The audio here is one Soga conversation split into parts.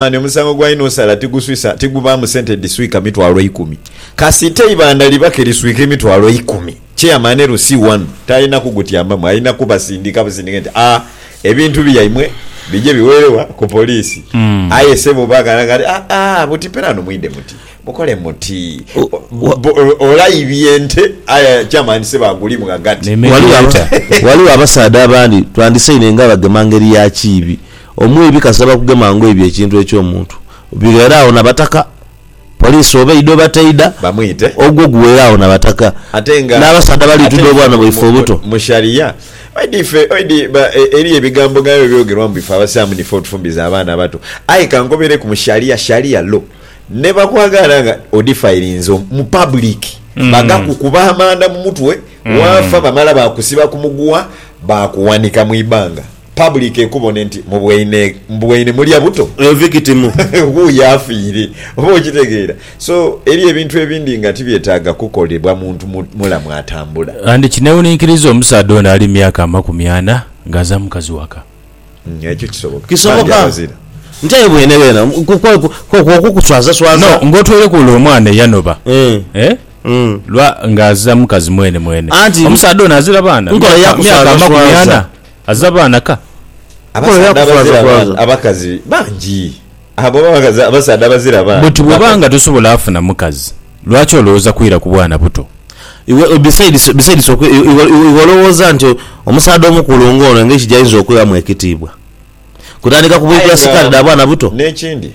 Mani omusango gwa Inosala tiguswisa, tigubaamu sente edhiswika mitwalo ikumi. Kasita eibanda liba ke liswika emitwalo ikumi, Chairman LC1 talina kugutyambamu, alina kubasindika busindike nti, A, ebintu byaimwe bije biweere wa? Ku poliisi. Aye ssebo baakanhanga nti, A, a, buti pelano mwidhe muti, mukole muti. Olaibye ente, aye Chairman ssebo agulimu ghagati. Ghaligho abasaadha abandi twandisaidhe nga bagema ngeri ya kiibi. Omwibi kasaba kugema nga oibye ekintu eky'omuntu. Bighere agho na bataka. Poliisi oba eidha oba teidha, ogwo guwere agho na bataka. N'abasaadha bali tuda obwana bwaife obuto. Mu Sharia, oidhi ife, oidhi ba, eriyo ebigambo nga ebyo ebyogerwa mbu ife Abasiraamu nife otufumbiza abaana abato. Aye ka nkobereku mu Sharia, Sharia law, ni bakwagaana nga odifayirinze mu public, bagakukuba amanda mu mutwe, waafa bamala baakusiba ku muguwa baakuwanika mu ibanga. Public ekubone nti mubwaine mubwaine mulya buto. Oyo victim. Wuuyo afiire. Oba okitegeera. So, eriyo ebintu ebindi nga tibyetaaga kukolebwa muntu mu mulamu atambula. And kinewuninkiriza omusaadha ono ali myaka amakumi ana nga aza mukazi waka. Ekyo kisoboka. Kisoboka. Bangi abazira. Nti aye bwene bwena kwo kukuswaza swaza. No, nga otweireku ole omwana eyanoba. Eh? Lwa nga aza mukazi mwene mwene. Anti. Omusaadha ono azira baana? Nkola ya kuswaza swaza. Myaka amakumi ana. Aze abaana ka. Abasaadha abazira abaana abakazi bangi. Abo abakazi abasaadha abazira abaana. Buti bwoba nga tosobola funa mukazi lwaki olowooza kwira ku bwana buto. Iwe besides besides okwi iwe olowooza nti omusaadha omukulu nga ono engeri jainza okughamu ekitiibwa kutandika ku bwidha sikaati dha bwana buto. Nekindi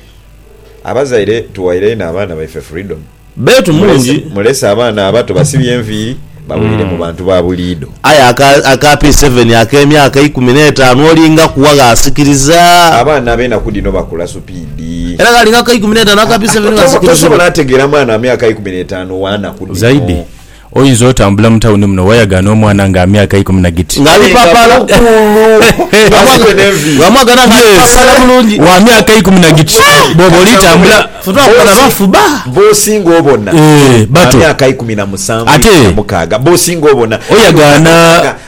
abazaire tughaire inho abaana baife freedom. Bbeetu mungi. Mulese abaana abato basibye enviiri bawulire mu bantu ba buliidho. Aye aka aka P7 ak'emyaka eikumi n'etaanu olinga kuwa gh'asikiriza. Abaana ab'enaku dhino bakula supiidi. Era gh'alinga ku eikumi n'etaanu aka P7 gh'asikiriza. Tosobola ategeera mwana wa myaka eikumi n'etaanu w'anaku dhino. Zaidi. Oyinza otambula mu tawuni muno wayagana omwana nga amyaka eikumi na giti. Nga alipapala. Wamwagana nga alipapala bulungi. Wa myaka eikumi na giti. Bwoba olitambula. Ffe twakubona bafu ba. B'osinga obona. Ba myaka eikumi na musanvu, eikumi na mukaaga. B'osinga obona. Oyagana.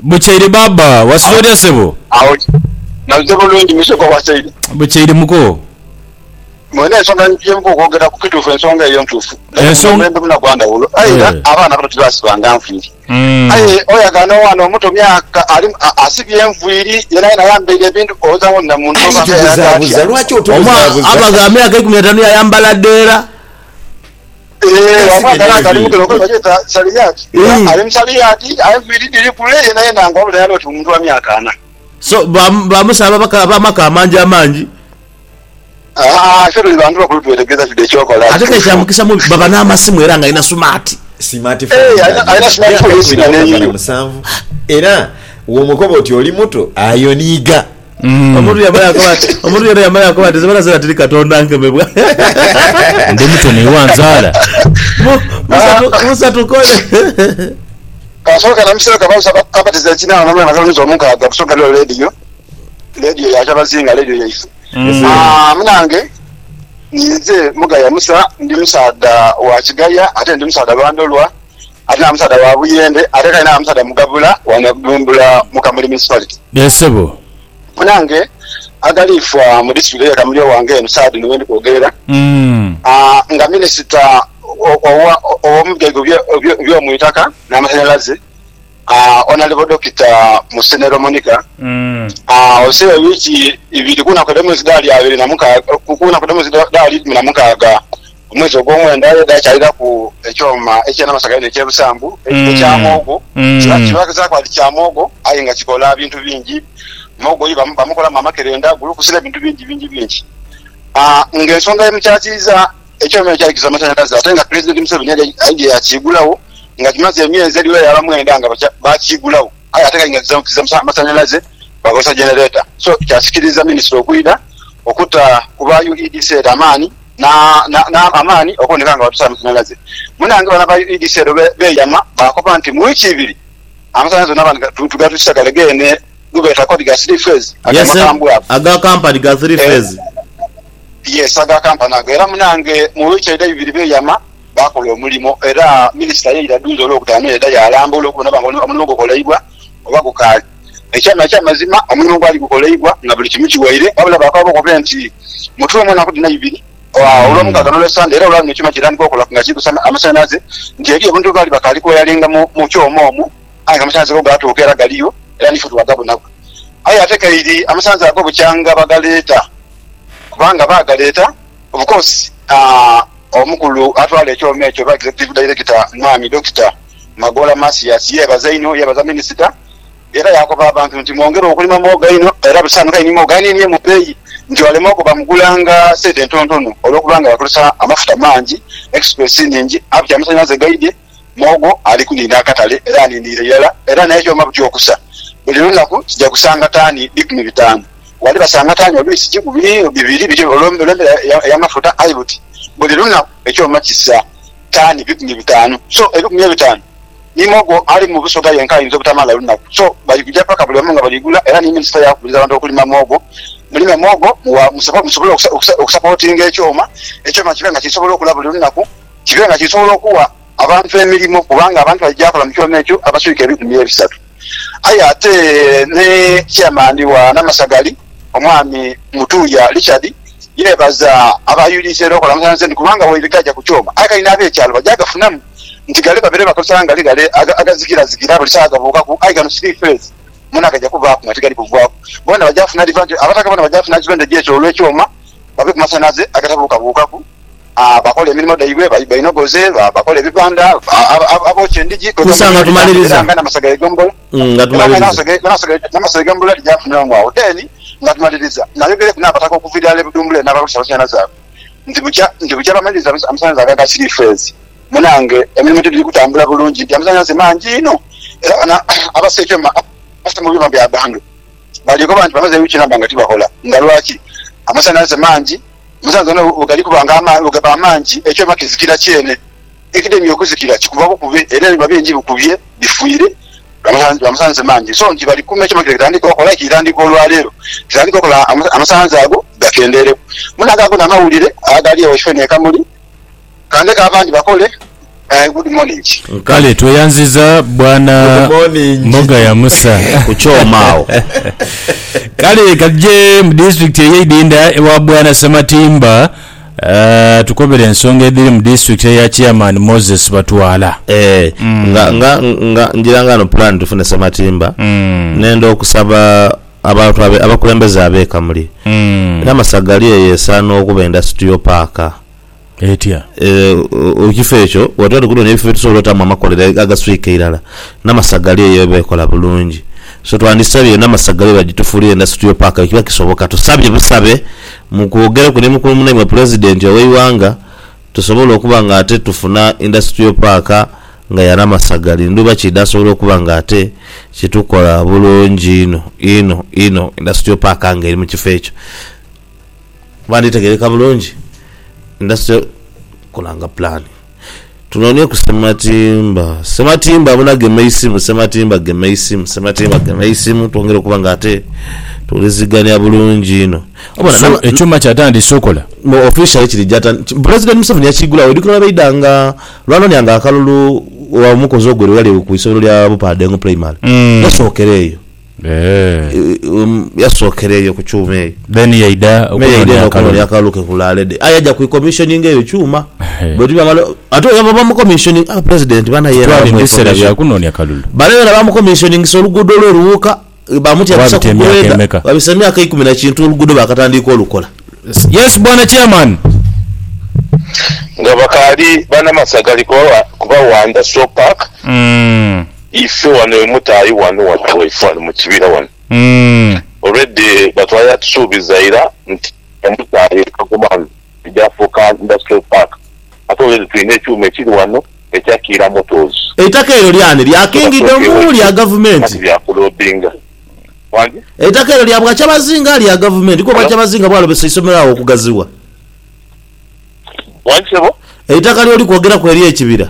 Bukyeire baaba, wasiza otya sebo? Awo naze bulungi musoga wasaire. Bukyeire muko. Mwena ensonga gyemuba okwogera ku kituufu ensonga eyo ntuufu naye guno omulembe muna gwa ndhawulo aye era abaana abato tibasibanga nviiri aye oyagala n'omwana omuto myaka asibye enviiri yenaye ayambaire ebintu owoza mbu namuntu oba nga yalaga atya omwana aba gha myaka ikumi na taanu yayambala dheera. So ba musaadha ba maka amangi amangi? Ate kale kya mukisa mubi baba n'amasimu era ng'alina sumaati. Era womukoba oti oli muto, ayoniiga. Omuntu yamala yakoba ati, omuntu yena yamala yakoba ati, Zibala zena tiri Katonda nkemebwa. Ndi muto naye wanzaala. Mu- Musa tu- Musa tukole. Kasoka na musero kabaisa kabatiza ekinaana na mwana kalonisa omukaaga kusoka lyo radio radio ya kyabazinga radio yaife Ah, munange ninze mugaya musa ndi musaadha wa kigaya ate ndi musaadha lwandolwa ate na musaadha wa buyende ate kale na musaadha mugabula wa Nabdumbula mu Kamuli Municipality. Yee sebo. Munange Agaliifwa mu Disitulikiti ye Kamuli owange eno saagha dhino wendi kwogerera nga Minisita omu bigaiga eby'omuitaka n'amasanhalaze Honourable Dokita Musenero Monica osibe wiiki ibiri ku naku edh'omwezi dha lyabiri na mukaaga ku naku edh'omwezi dha likumi na mukaaga Ku mwezi ogw'omwenda ye dhaakyaliraku ekyoma eky'enamasaga inho eky'ebisambu, ekya mogo. Kibazaaku ati kya mogo, aye nga kikola bintu bingi. Mogo ye bamukolamu amakerenda, gulukusi n'ebintu bingi bingi bingi. Ng'ensonga y'emukyatiiza, ekyoma ekyo kyaikiza amasanhalaze ate nga Pulezidenti Museveni yali aidhye yaakiigulagho nga kimaze emyezi edhiwera yaba mwenda nga baakiigulagho aye ate nga kiza amasanhalaze bakozesa genereta. So kyasikiriza minisita okwidha okuta ku ba UEDC amaani. n'amaani okuboneka nga batusaala mu kisanhalaze. Munnange bano aba UEDC eno beeyama baakoba nti mu wiiki ibiri amasanhalaze onaaba nga tugatwikisa gale geene gebeeta kodi ga three phase ago amakambwe ago. Aga kampani ga three phase? Yes aga kampani ago era munnange mu wiiki eidha ibiri beeyama baakola omulimo era minisita ye ira dhuuza Olwokutaano yaidha yaalambula okubona oba nga omulimo gukolaibwa. oba gukaali. Ekyama eky'amazima omulimo gwali gukoleibwa nga buli kimu kiwaire, wabula baakaba bakobe nti, Mutuwe mu naku dhino ibiri, Olwomukaaga n'Olwesande, era olwa luno ekyuma kitandika okola nga kiri kusa amasanhalaze, nti eriyo obuntu bwe baali bakaali kuwayaringa mu kyoma omwo, aye nga amasanhalaze go gaatuuka era galiyo, era n'ife twagabonaku. Aye ate kaire amasanhalaze ago bukyanga bagaleeta, kubanga baagaleeta of course Omukulu atwala ekyoma ekyo oba Executive Director, Mwami Dokita, Magoola Masias yeebaza inho, yeebaza minisita era yaakoba abantu nti mwongere okulima muwogo einho era busanhuke ni muwogo aniinie mu beeyi nti ole muwogo bamugulanga sente ntonotono olwokuba nga bakozesa amafuta mangi, express nhingi abuti amasanhalaze gaidhye, muwogo ali kuniina akatale era aniiniire irala era n'ekyoma buti okusa buli lunaku kija kusanga taani bikumi bitaanu wali basanga taani oluisi kikumi bibiri bityo olw'embera ey'amafuta aye buti buli lunaku ekyoma kisa. taani bikumi bitaanu. So ebikumi ebitaanu niime ogwo ali mu busoga yenka ayinza obutamala lunaku. So bali kuja paka buli omu nga bali gula era ni minisita yakubiriza abantu okulima muwogo. Mulime muwogo musobole okusapotinga ekyoma, ekyoma kibe nga kisobola okula buli lunaku, kibe nga kisobola okuwa abantu emirimo kubanga abantu baija kola mu kyoma ekyo abaswika ebikumi ebisatu. Aye ate ni Chairman wa Namasagali Omwami Mutuuya Richard yeebaza aba UDC era okola amasanhalaze nti kubanga waire gaaja ku kyoma aye kati n'abekyalo baja gafunamu nti ghale babeere bakozesa nga ali ghale agazigirazigirazigira buli saagha gabuukaku aye gano three phase mwona gaja kuvaaku nga tigali kuvaaku. Boona baja funa advantage, Abataka boona baja funa advantage eky'olw'ekyoma babe ku masanhalaze agatabuukabuukaku. Abakola emirimo dhaibwe bainogoze, abakola ebibanda, abookya endhigi, kwegamba nga bwebitambulira, era nga n'amasaga y'egombolola, era nga n'amasaga y'egombolola dhigaafunirwamu agho. Then nga tumaliriza, nayogereku n'abataka okuva irala e Budhumbule n'abalusa abasaana zaabwe nti bukya nti bukya bamaliriza amasanhalaze ago aga siriifeezi. Munange emirimo ti giri kutambula bulungi nti amasanhalaze mangi inho, era bano abasa ekyuma abasa mu byuma bya bantu bali koba nti bamaze wiiki namba nga tibakola. Nga lwaki? Amasanhalaze mangi. Musanze ono bwe gali kuba nga amaani bwe gaba amangi, ekyoma kizikira kyene. Ekidemye okuzikira kikuva bukubi era ebiba bingi bikubye bifiire lwa masanhalaze mangi. So nti bali kuma ekyoma kino kitandike okola, kitandika olwa leero, kitandike okola amasanhalaze ago gakendeereku. Muno agaago n'amawulire agaali eyo Shifo n'e Kamuli. Ka ndeke abandi bakole. Eh, good morning. Kale tweyanziza bwana Mogaya Musa ku kyoma agho. Kale katuje mu disitulikiti eye Idinda ewa bwana Sematimba atukobere ensonga edhiri mu disitulikiti eya Chairman Moses Batwala. Eeh nga nga nga ngira nga no plan tufune Sematimba nenda okusaba abantu abe abakulembeze abe Kamuli era Masaga gali eyo esaana okuba industrial park. Etya? Mu kifo ekyo bwe tuba tukunoonia ebifo bye tusobola otaamu amakolero agaswika irala, Namasaga ghali eyo eba ekola bulungi. So twandisabye Namasaga ghali badhitufuulire Industrial Park bwe kiba kisoboka. Tusabye busabe mu kwogereku ni mukulu munaimwe Pulezidenti ow'eighanga tusobole okuba nga ate tufuna Industrial Park nga ya Namasaga ghali ndhuba ki idhaasobola okuba nga ate kitukola bulungi inho inho inho Industrial Park nga eri mu kifo ekyo. Kuba nditegereka bulungi ndase kulanga pulaani. Tunonieku Ssematimba, Ssematimba abona gema eisimu, Ssematimba gema eisimu, Ssematimba gema eisimu twongere okuba nga ate tuwulizigania bulungi inho. Obona So, na- ekyuma kyatandise okola? mu officially kiri jata president museveni yakigulawo oidukira webaida nga lwanonia nga akalulu wa mukozi ogwerero eyali ku isobero lya bupadengo primary yasokera eyo Yasookera eyo ku kyuma eyo. Then yaidha okunoonia akalulu ke ku Lalede. Aye yaja kwikommissioninga eyo kyuma. Ate oyo yaava bamukommissioninga, ah President banae yena bamuwa information. Banae yena bamukommissioningisa oluguudo lwe Luwuuka, baamutya busa ku grader. Wabisa myaka ikumi na kintu oluguudo baakatandiika olukola. Yes Bwana Chairman. Nga bakaali bana Masaka ali kubawandha Stroke Park. Ife wano e Mutayi wano wano awaife wano mu kibira wano already batwala yatusuubiza ira nti e Mutayi e Kagoma wano eja fuuka Industrial Park ate already tulina ekyuma ekiri wano ekya kiira motors. Eitaka eryo lyani? Lya King Idomu? Lya gavumenti? Eitaka eryo lya Bwakyabazinga? Lya gavumenti? Kwo Bwakyabazinga bwalobesa eisomero agho okugazibwa? Eitaka lyoli kwogeraku ery'ekibira?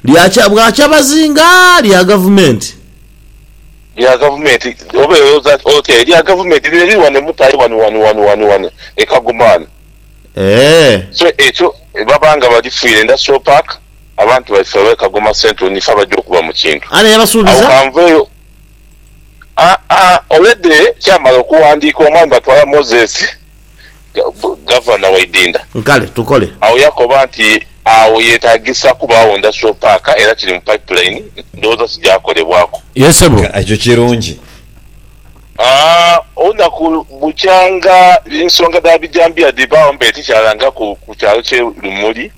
Lya kya bwa kyabazinga lya gavumenti. Lya gavumenti oba elowoza otya elya gavumenti lino liri wano e Mutaayi wano wano wano wano wano e Kagoma wano. Eeh. So ekyo baba nga balifiire nda so park abantu baife abe Kagoma central nife abaja okuba mu kintu. Ani eyabasuubiza? Agho kanveeyo aa already kyamala okuwandiikibwa omwami Batwala Moses Gavana Waidinda. Kale tukole. Agho yakoba nti, Agho yeetaagisa kubaagho Industrial Park era kiri mu pipeline, ndowooza kigyakolebwaku. Yee sebo. Nga ekyo kirungi. Olunaku bukya nga ensonga dha bijambiya dhibaagho mbaire tikyalangaku ku kyalo kye Lumuli,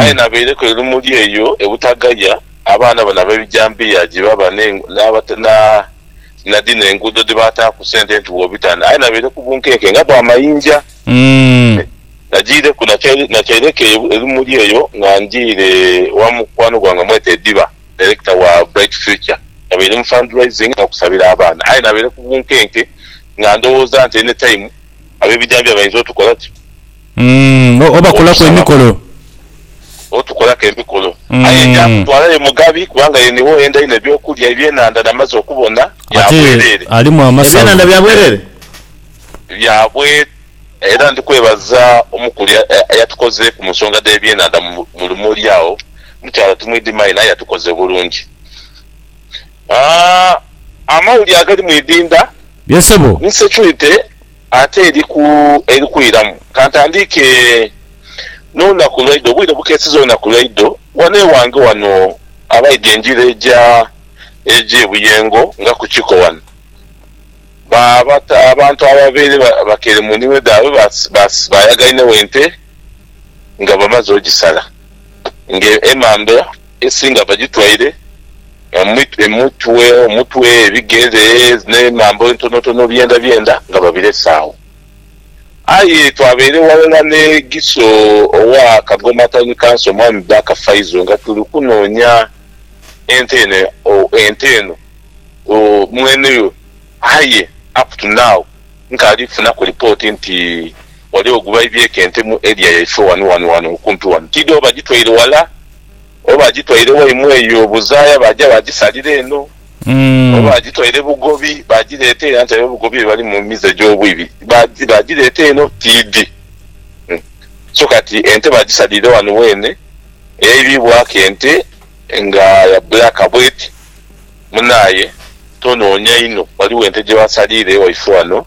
aye nabaireku e Lumuli eyo e Butagaya, abaana bano ab'ebijambiya gye baba n'abatali. na dhino enguudo dhe baataaku sente nti bw'obitana aye nabaire ku bunkenke nga bwa mayinja. Nagiireku nakyaireku ebimuli eyo nga njiire wa mukwano gwange bamweta Ediba, director wa Bright Future. Nabaire mu fundraising n'okusabira abaana aye nabaire ku bunkenke nga ndowooza nti any time ab'ebijambiya bainza otukola ki? Mm, o- obakolaku Okusaba emikolo. kuno. Otukolaku emikolo. Aye Mm. ndyakutwala ye Mugabi, kubanga ye niwe oyenda inho eby'okulya, ebyenhandha namaze okubona, bya Ate bwereere. alimu amasavu. Ebyenhandha bya bwereere? Bya bwe. Era ndi kwebaza omukulu eya- eya- eyatukozeeku mu nsonga dh'ebyenhandha mu mu- mu Lumoli agho. Mukyala timwidhima inho aye yatukoze bulungi. Ah, amawuli agali mu idhindha Ye ssebo. ni securite. Ate eri ku eri kwiramu, ka ntandiike n'olunaku lwaidho, obwire bukeeseza olunaku lwaidho, ghano ewange ghano abaidha engira eja eja e Buyengo nga ku Kiko ghano, ba bata abantu ababaire bakeire mu nimiro dhaabwe ba ba baayagainegho ente nga bamaze ogisala nga emambya. Esinga bagitwaire emitwe, omutwe, ebigere n'emambo entonotono byendabyenda nga babirese agho. Aye twabaire ghalala n'e Giso owa Kagoma Town Council, Mwami Baker Faizo nga tuli kunoonya ente eno ente eno mwene yo aye up to now nkaali kufunaku lipooti nti ghaligho gwe baibyeku ente mu area yaife ghano ghano ghano okumpi ghano. Tiidhi oba bagitwaire ghala. Oba baagitwaire waimwe eyo buzaaya baaja baagisalira eno, oba baagitwaire bugobi baagireeta eno, anti abe bugobi be bali mu mize egy'obwibi, baagireeta eno, tiidhi. So kati ente baagisaliire ghano weene, eyaibibwaku ente nga ya bbulaaka bw'eti. Munaaye, tonoonia inho, ghaligho ente gye baasaliire ewaifo ghano,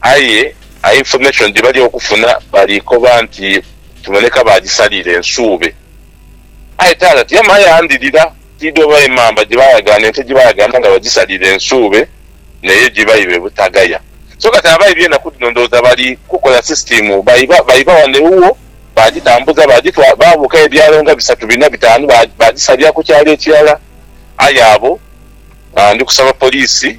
Aye a information gyebali okufuna bali koba nti kiboneka bagisaliira ensuube. Aye taata tiyama aye andhirira tidhi oba emamba gyebayagaana ente gyebayagaana nga bagisaliira ensuube neyo gyebaiba e Butagaya. So kati abaibi enaku dhino ndhowooza bali kukola system baiba baiba wano ewuwo bagitambuza bagitwala babuukayo ebyalo nga bisatu bina bitaanu bagisalira ku kyalo ekirala. Aye abo ndi kusaba police.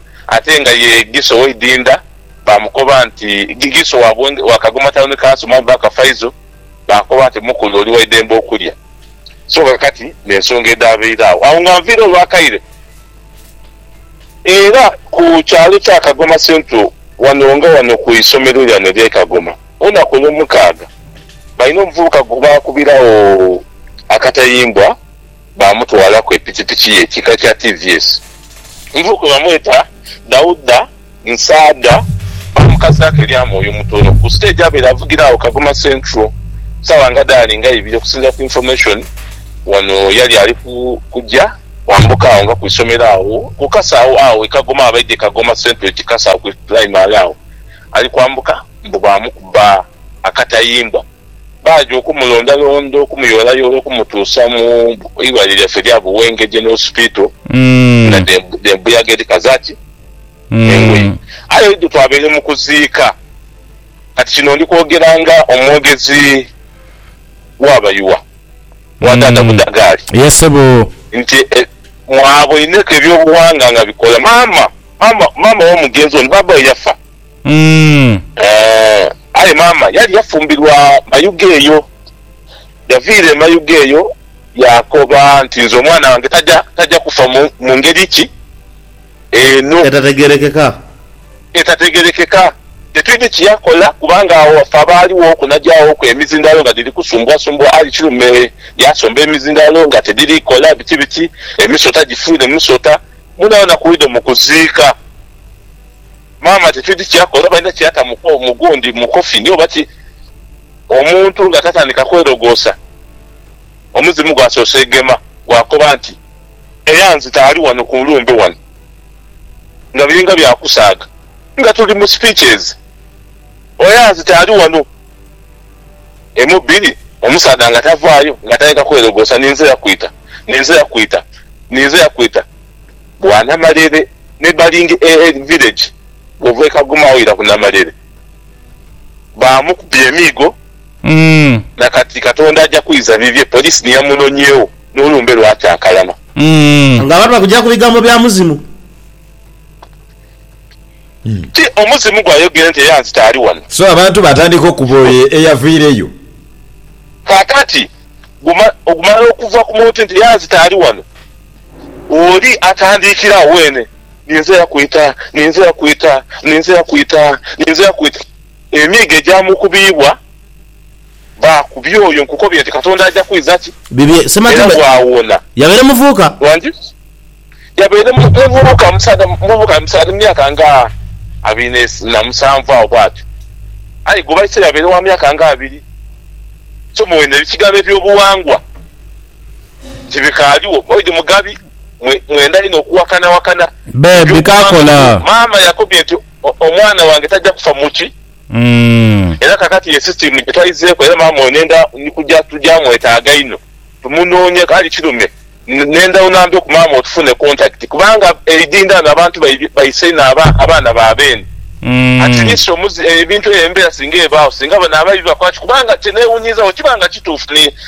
Ate nga ye Giso w'eidinda baamukoba nti, Giso wa Bwenge, wa Kagoma Town Council, Mwami Baker Faizo, baakoba nti, Mukulu, oli wa idembe okulya. So kakati n'ensonga edhaabaire agho. Agho nga nviire olwakaire era ku kyalo kya Kagoma Central wano nga wano ku isomero lyano ery'e Kagoma, olunaku Olwomukaaga, baine omuvubuka gwe baakubiragho akatayimbwa. baamutwala ku epikipiki ye kika kya TVS. Nvo kwe bamweta Dauda Nsaadha baamukazaako erya Mwoyo Mutono ku siteegi abaire avugira agho Kagoma Central sawa nga dhaali nga ibiri okusinzira ku information wano yali ali kuja kwambuka agho nga ku isomero agho ku kasawo agho e Kagoma abaidha e Kagoma Central e Kikasa agho ku primary agho ali kwambuka mbu baamukuba akatayimbwa. baaja okumulondalonda, okumuyoolayoola okumutuusa mu irwaliro lyaife erya Buwenge General Hospital nga dh'embuyaga edhika zaki? Engoye. Aye idho twabaire mu kuziika. Kati kino ndi kwogera nga omwogezi wa Bayiwa, wa Taata Budhagaali, nti mwaboineku eby'obuwanga nga bikola. Maama, maama, maama w'omugenzi ono, bbaabba we yafa. Umm. Eeh, aye maama yali yafumbirwa Mayuge eyo. Yaviira e Mayuge eyo yaakoba nti, Nze omwana wange taja, taja kufa mu, mu ngeri ki eno. Etategeerekeka. Etategeerekeka. Tetwidhi ki yakola, kubanga agho waffe abaaliwoku n'ajaaghoku emizindalo nga dhiri kusumbuasumbuha. Ali kilume yaasomba emizindalo nga tidhiri kola, biki biki, emisota gifuire musota. Mwonabona ku idho mu kuziika. Maama titwidi kyakola oba alina kyata mu gundi mu coffin oba ki omuntu nga tatandika kwelogosa omuzimu gwasoose gema gwakoba nti eyanzita ali wano ku nlumbe wano nga biringa bya kusaaga nga tuli mu speeches eyanzita ali wano emu bbiri omusaadha nga tavaayo nga atandika kwelogosa ninze yakwita ninze yakwita ninze yakwita. bwa Namalere me baling e village of e Kagoma oira ku Namalere. Baamukubye emiigo na kati Katonda aja kwiza bibye police ni yamunonyegho n'olumbe lwatakalama. Nga abantu bakugya ku bigambo bya muzimu. Ti omuzimu gwayogere nti eyanzita ali wano. So abantu baatandika okukuba oyo eyavaireyo. Kaakati, guma, ogumala okuva ku muntu nti eyanzita ali wano. Oli atandiikira agho weene, ninze yakwita, ninze yakwita, ninze yakwita, ninze yakwita. Emiigo egyamukubiibwa baakubya oyo nkukobye nti Katonda aja kwidha ki? Bibye, era Sematimba bwawona. yabaire muvuuka. Wangi? Yabaire mu, muvubuka, musaadha muvubuka, musaadha mu myaka nga abiri ne, na musanvu agho bwatyo. Aye gwe baise yabaire wa myaka nga abiri. Somo weene ekigambo eby'obuwangwa. ti bikaaliwo. Boyd Mugabi, Mwe mwenda inho okuwakanawakana eby'okubantu bino. Maama yakobye nti, Omwana wange taja kufa muti. Era kakati ye sisitiimu gye twaizeeku era maama oyo nenda ni kuja tuja mwetaaga inho tumunoonye kale kirume. Nenda onambe ku maama otufune kontakiti kubanga eidhindha ghano abantu baisa inho abaana ba beene. At least omuzi ebintu eyo embera singa ebaagho singa bano ababi bakola ki kubanga kye newunyiiza bwe kiba nga kituufu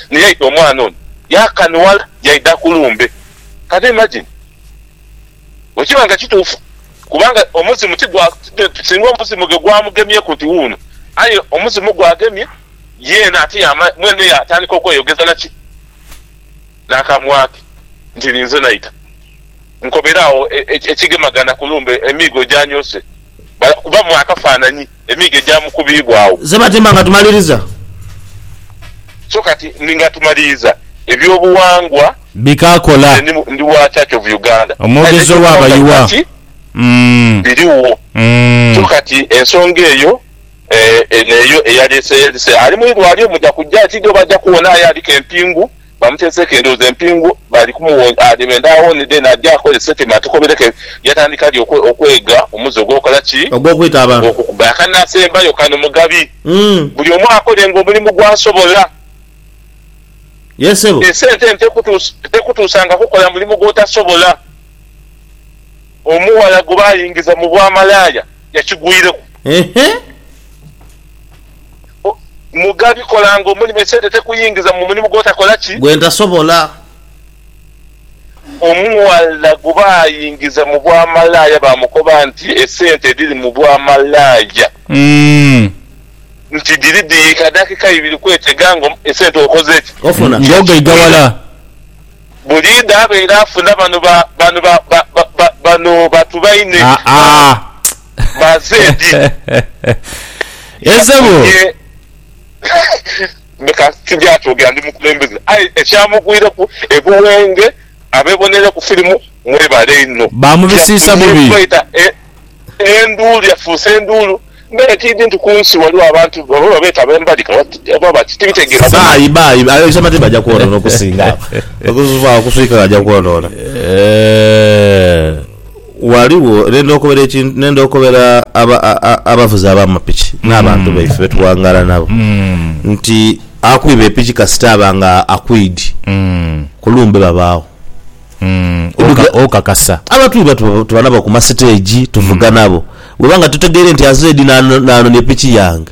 ni yaita omwana ono yaakanwala yaidha ku lumbe. Can you imagine? Bwe kiba nga kituufu, kubanga omuzimu ti gwa, singa omuzimu ghe gwamugemyeku nti wuuno, aye omuzimu gwagemye yeena ate yaama, mwene yaatandika okweyogeza naki? N'akamwa ke nti, Ninze naita. Nkobera agho ekigemagana ku lumbe, emiigo gyanyoose. Bali kukubamu akafaananyi emiigo egyamukubiibwagho. Ze batimba nga tumaliriza. So kati ni nga tumaliriza, eby'obuwangwa Bikaakola. Nze ndi, ndi wa Church of Uganda. Kale Omwogezi n'eky'obuwangwa ow'abayiwa. kati Mm. biriwo. Mm. So kati ensonga eyo, eh, eno eyo eyaleese, yalese, ali mu irwaliro, muja kujja, tidhi oba aja kuwona aye aliku empingu. Bamuteeseeko endhoozi empingu, bali kumuwonga adhe benda awone then aje akole statement atukobereko yatandika ddi okwega omuze ogw'okukola ki? Ogw'okwita abantu. Ogw'okuba. Akanasembayo kano Mugabi, buli omu akolenga omulimu gw'asobola. Yee ssebo. Esente eno tekutuusanga kukola mulimu gw'otasobola. Omughala gwe baayingiza mu bwa malaaya yakigwireku. Eehh. Mugabi, kolanga omulimo, esente tekuyingiza mu mulimu gw'otakola ki? Gwentasobola. Omughala guba ayingiza mu bwa malaaya baamukoba nti esente edhiri mu bwa malaaya nti dhiri dhiika dakika ibiri kwetega nga esente okoze ki? Ng'ogaigawala. Buliidha abaire afuna bano ba, bano ba, ba, ba, ba, bano batu baine. Aa, aa. Mazeedi yafunye leka tugye atwogera ndi mukulembeze aye ekyamugwireku e Buwenge abeboneireku firimu mwebale inho yafunye faida enduulu yafuuse enduulu mbere tiidhi nti kunsi waliwo abantu oba babeeta abembalika oba baki tibitegeera buli. Ghaligho n'endha okobera abavuzi ab'amapiki n'abantu baife be tuwangaala nabo nti akwiba epiki kasita aba nga akwidi ku lumbe babaagho. Okakasa? Abatwiba tuba nabo ku masiteegi, tuvuga nabo. Bw'oba nga totegeire nti azze di n'anona epiki yange.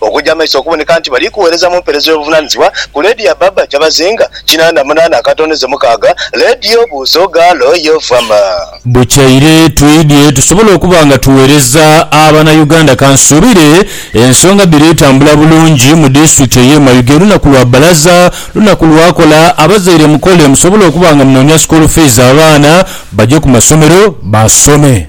Okuja amaiso okuboneka nti bali kughereza mu mperezo y'obuvunanizibwa ku leediyo ya Baba Kyabazinga kinana munana akatondeze mukaaga, leediyo Buuzo Gaalo yo Vama. Bukyaire twidhye tusobole okuba nga tughereza abana Uganda. Kansuubire ensonga dhiri tambula bulungi mu disitulikiti eye Mayuge. Lunaku lwa balaza, lunaku lwakola. Abazaire mukole musobole okuba nga munonya school fees abaana baje ku masomero basome.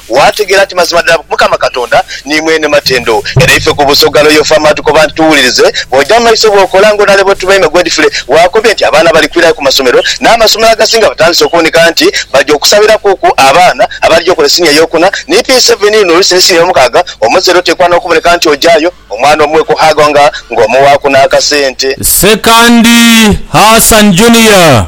Waategeera nti mazima ddala Mukama Katonda ni mwene matendo, era ife ku Busoga Royal Farm atukoba nti tuwulirize, bw'oja mu maiso bw'okola ng'onale bwe tuba ime gwedifule. Waakobye nti abaana bali kwirayo ku masomero, n'amasomero agasinga batandise okuboneka nti baja okusabirakuuku abaana abalija okola esiniya ey'okuna ni P7 luno olusi ni siniya ey'omukaaga. Omuzaire oteekwa n'okuboneka nti ojayo omwana omuwe ku haaga nga ng'omuwaaku n'akasente. Ssekandi Hassan Junior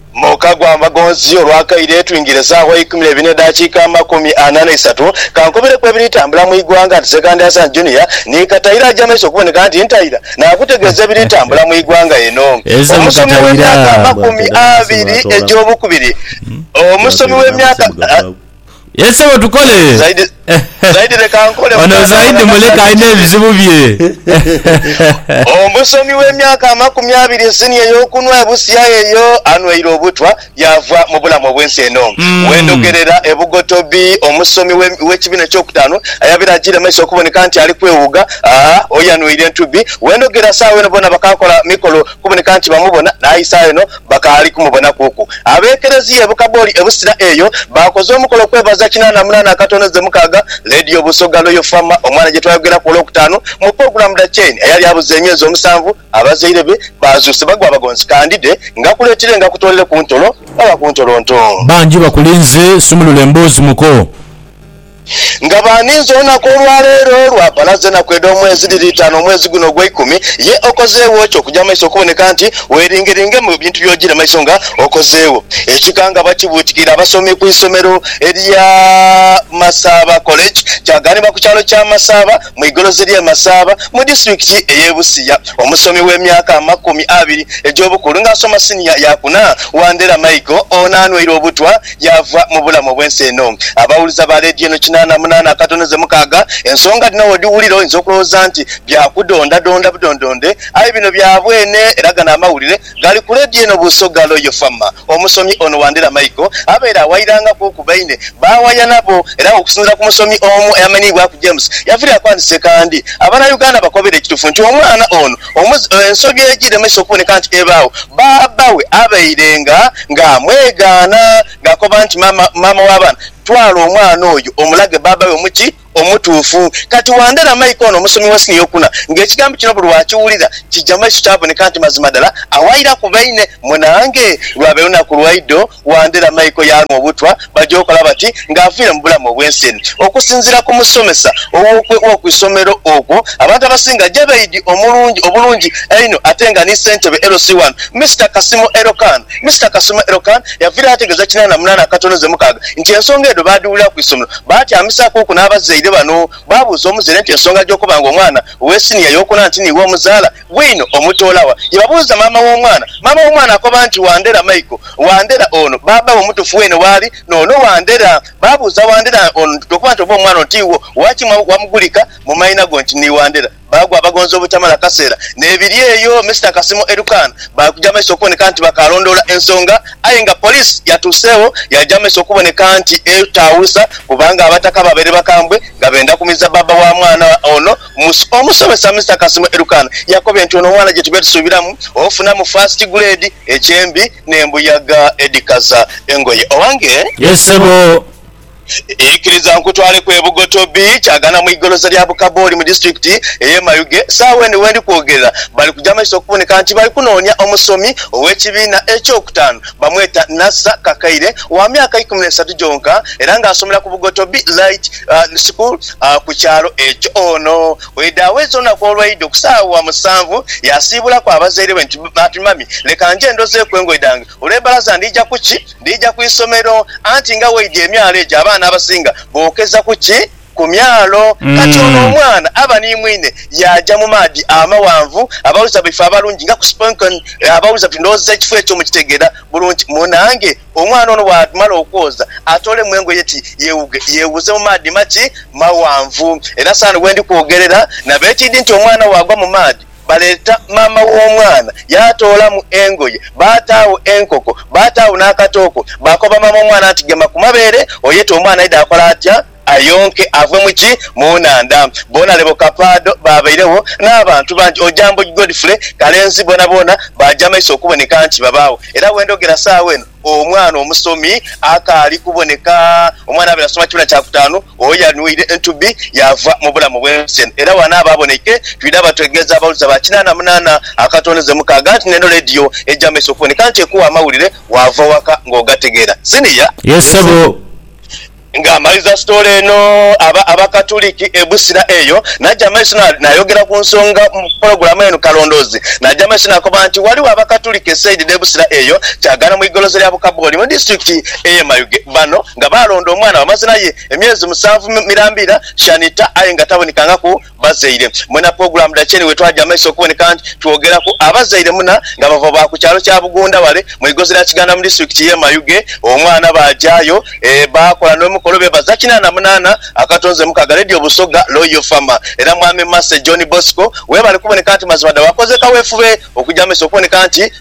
Muka gwa Mbagonzi, Olwakaire twingire sawa eikumi neibiri nedakiika amakumi ana neisatu, kankobereku ebiri tambula mwigwanga nti Sekandi Hassan Junior ni Kataira aja maiso okuboneka nti ntaira nakutegeeza ebiri tambula mwigwanga eno. Omusomi wemyaka amakumi abiri egyobukubiri Omusomi wemyaka. Ye sebo tukole. Zaidi Zaidi leka nkole Ono mukwano Zaidi abona muleke nasaja alina kiki. ebizibu bye. Omusomi w'emyaka amakumi abiri nsini ey'okunhwa ebusia eyo anhweire obutwa yaava mu bulamu obw'ensi eno. Bwendhogerera e Bugotobi, omusomi w'e w'ekibiina eky'okutaanu ayabaire ajiire maiso okuboneka nti ali kwewuuga aa oyo anhweire entubbi. Bwendhogera saagho eno boona bakakola mikolo kuboneka nti bamubona naye saagho eno bakaali kumubonakuuku. Ab'ekerezia e Bukaboli e Busira eyo baakoze omukolo kwebaza kinaana munaana akatono ze mukaaga. Leediyo Busoga Loyal Farmer omwana gye twayogeraku Olwokutaanu mu pulogulaamu dha Chain eyali abuze emyezi omusanvu, abazaire be baazuuse bagwa abagonzi kandide nga kuleetire nga kutoolere ku ntolo oba ku ntolonto. Bangi bakulinze sumulula emboozi muko. Nga baaninze olunaku olwaleero lwa bbalaza enaku edh'omwezi dhiri itaanu omwezi guno ogweikumi, ye okozeegho ki okuja mu maiso okuboneka nti weeringeringe mu bintu by'ojiire mu maiso nga okozeegho? Ekikangabwa kibuutikire abasomi ku isomero erya Masaaba College kyagaanibwa ku kyalo kya Masaaba mu igolozi ly'e Masaaba mu disitulikiti ey'e Busia omusomi w'emyaka amakumi abiri egy'obukulu nga asoma siniya yaakuna, Wandera Michael ono anweire obutwa Yaava mu bulamu obw'ensi eno. Abawuliza ba leediyo eno kinaana munaana akatono ze mukaaga. Ensonga dhino w'odhiwulira oyinza okulowooza nti bya kudondadonda budondonde, aye bino bya bwene era gano amawulire gali ku leediyo eno Busoga Royal FM. Omusomi ono Wandera Michael abaire awayirangaku ku baine b'awaya nabo era nga okusinziira ku musomi omu eyamanhiibwaku James Yaviira yakwandisa ekandhi Abanayuganda bakobere ekitufu nti omwana ono Ensobi egiremesa okuboneka nti ebaawo, bbaabba we abairenga ng'amwegaana, ng'akoba nti, Maama w'abaana, twala omwana oyo omulage bbaabba we omuti omutuufu. Kati Wandera Mike ono omusomi wa siniya okuna ng'ekigambo kino buli lw'akiwulira kija mu maiso kyaboneka nti mazima dala awairaku baine. Munange, lwaba lunaku lwaidho Wandera Michael yaanwa obutwa baja okola bati nga aviire mu bulamu obw'ensi eno. Okusinziira ku musomesa w'oku isomero okwo, abantu abasinga Jabeidi omulungi obulungi einho ate nga ni ssentebe LC wano, Mister Kasimo Elokan. Mister Kasimo Elokan yaviirayo ategeeza kinaana na munaana akatono ze mukaaga nti ensonga edho baadhiwulira ku isomero baatyamisaakuku n'abazaire bano. Baabuuza omuzaire nti ensonga gy'okoba nga omwana ow'esiniya y'okuna nti niiwe omuzaala, Bwino omutoola wa? Yebabuuza maama w'omwana. Maama w'omwana akoba nti, Wandera Michael. Wandera ono bbaabba we omutufu weene waali, n'ono Wandera. Baabuuza Wandera ono nti, Tokoba nti oba omwana ono ti wo? Waki wamugulika mu maina go nti ni Wandera? Baagwa abagonza obutamala kaseera. N'ebiri eyo, Mister Kasimo Erukaana baakuja amaiso okuboneka nti bakaalondoola ensonga, aye nga poliisi yatuuseegho yaaja amaiso okuboneka nti etaawulusa kubanga abataka baabaire bakambwe nga benda kumiza bbaabba wa mwana ono Musa. Omusomesa Mister Kasimu Elukaana yakobye nti ono omwana gyetube tusuubiramu ofunamu first grade ekyembi n'embuyaga edhikaza engoye. Owange. Yes ssebo. Ikiriza nkutwaleku e Bugotobi, Kyagana mu igoloza lya Bukabooli mu disitulikiti ey'e Mayuge. Saagho eno wendi kwogerera bali kugya maiso okuboneka nti bali kunoonya omusomi ow'ekibiina eky'okutaanu bamweta Nasser Kakaire wa myaka ikumi n'esatu gyonka era nga asomera ku Bugotobi Light Nsuku ku kyalo ekyo. Ono bwaidha aweza olunaku olwaidha okusaawa musanvu, yaasiibulaku abazaire be nti, Ati mami, leka nje ndozeeku engoye dhange. Olw'ebbalaza ndija ku ki? Ndija ku isomero. Anti nga weidhie emyalo egyo abaana abasinga bookeza ku ki? Ku myalo. Kati ono omwana aba ni mwine yaaja mu maadhi amaghanvu, abawuliza baife abalungi nga ku Sponken. Abawuliza bati, Ndowooza ekifo ekyo mukitegeera bulungi munange. Omwana ono bw'amala okwoza, atoolemu engoye ti yeewuge, yeewuze mu maadhi maki? Maghanvu. Era saano we ndi kwogerera nabo ekiidhi nti omwana bw'agwa mu maadhi, baleeta maama w'omwana yaatoolamu engoye, baataagho enkoko, baataagho n'akatooko, baakoba maama w'omwana nti gema ku mabeere oyete omwana aidhe. Akola atya? Ayonke ave mu ki? Mu nhandha. Boona lebo Kapaado baabairegho, n'abantu bangi oja Mboghi Godfrey, Kalenzi boonaboona baaja maiso okuboneka nti babaagho. Era we ndhogera saagho eno omwana omusomi akaali kuboneka. Omwana abaire asoma kibiina kya kutaanu oyo yanwire entubi yaava mu bulamu bw'ensi eno. Era wano abo aboneike twidha bategeeza abawuliza ba kinaana munaana akatondeze mukaaga nti n'eno leediyo eja maiso okuboneka nti ekuwa amawulire waava waka ng'ogategeera. Siniya. Ye ssebo. Nga amaliza sitoole eno, aba Abakatuliki e Busira eyo n'aja maiso n'ayogera ku nsonga mu pulogulaamu eno. Kalondoozi n'aja maiso n'akoba nti ghaligho Abakatuliki e saidi dh'e Busira eyo kyagaana mu igolosa lya Bukabooli mu disitulikiti ey'e Mayuge. Bano nga baalonda omwana bamaze naye emyezi musanvu mirambiira, Shanita, aye nga tabonekangaku. Bazaire mwena pulogulaamu dha Kyenhi wetwaja maiso okuboneka nti twogeraku abazaire muna nga bava ba ku kyalo kya Bugunda wale mu igozi lya Kiganda mu disitulikiti ye Mayuge omwana bajayo bakola nomukolo bebaza kinana munana akatonze mukaga Radio Busoga Loyal Farmer era Mwami Mercy John Bosco webale kuboneka nti mazima da wakoze kawefube okuja maiso okuboneka nti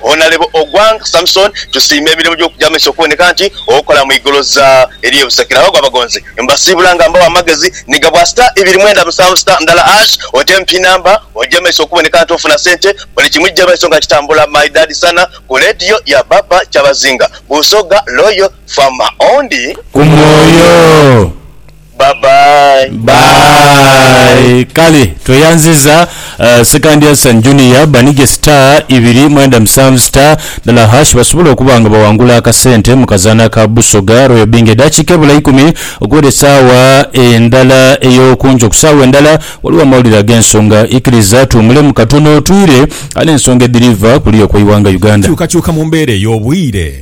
Honalebo Ogwang Samson tusiima emirimo gy'okugya amaiso okuboneka nti okola mu igoloza ery'e Buseke. Nabago abagonzi mbasiibula nga mbawa amagezi ni gabwa star ibiri mwenda musanvu star ndala ash oteemu pin number ogye maiso okuboneka nti ofuna sente buli kimu kigye maiso nga kitambula my dad sana ku radio ya baba kyabazinga busoga loyal farmer ondi. Ku mwoyo. Bye bye. Bye. Kale tweyanziza Sekandi Hassan Junior banige star ibiri mwenda musanvu star dhala hash basobole okuba nga bawangula akasente mu kazaana ka Busoga Royal Bingo. Edaakiika ebula ikumi okuwera esaawa endala ey'okunkyo. Ku saawa endala waliwo amawulire ag'ensonga. Ikiriza tuwumulemu katono twire n'ensonga edhiriva kuliya okw'eighanga Uganda. Enkyukakyuka mu mbeera ey'obwire.